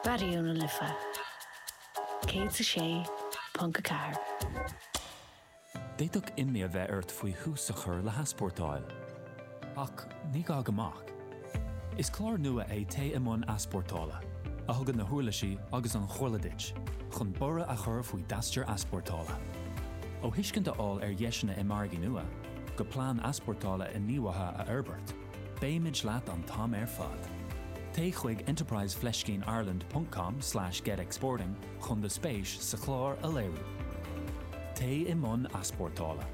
Raidió na Life 106.4. D'fhéadfadh imní a bheith ort faoi thús a chur le heaspórtáil. Ach ní gá go mbeadh. Is clár nua é Téigh i mbun Easpórtála, a thugann na huirlisí agus an chomhairle duit chun borradh a chur faoi d'aistear easpórtála. Ó thuiscint a fháil ar dheiseanna i margaí nua, go plean easpórtála inghníomhaithe a fhorbairt, Beimid leat an t-am ar fad. Téigh chuig enterprise-ireland.com/getexporting chun do spéis sa chlár a léiriú. Téigh i mbun easpórtála.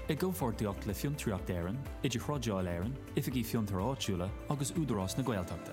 I gcomhpháirtíocht le Fiontraíocht Éireann, IdirThrádáil Éireann, Oifigí Fiontair Áitiúla agus Údarás na Gaeltachta.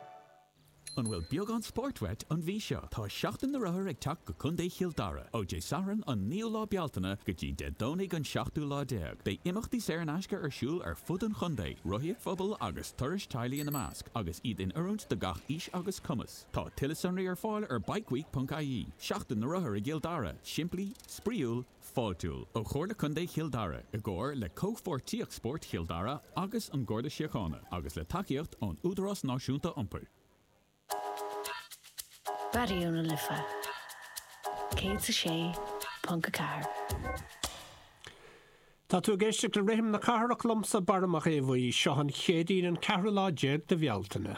An bhfuil beagán spóirt uait an mhí seo? Tá Seachtain na Rothar ag teacht go Contae Chill Dara ó Dé Sathairn an 9ú lá Bealtaine go dtí Dé Domhnaigh an 17ú lá. Beidh imeachtaí saor in aisce ar siúl ar fud an chontae, rothaíocht phobail agus turais teaghlaigh ina measc, agus iad in oiriúint do gach aois agus cumas. Tá tuilleadh sonraí ar fáil ar bikeweek.ie. Seachtain na Rothar i gCill Dara, simplí, spraíúil, Fáiltiúil ó Chomhairle Contae Chill Dara i gcomhar le Comhpháirtíocht Spóirt Chill Dara agus an Garda Síochána agus le tacaíocht ón Údarás Náisiúnta Iompair. Raidió na Life 106.4. Tá tú ag éisteacht le Rithim na Cathrach liomsa Barra Mac Aodha Bhuí. Seo an Chéadaoin an ceathrú lá déag de Bhealtaine.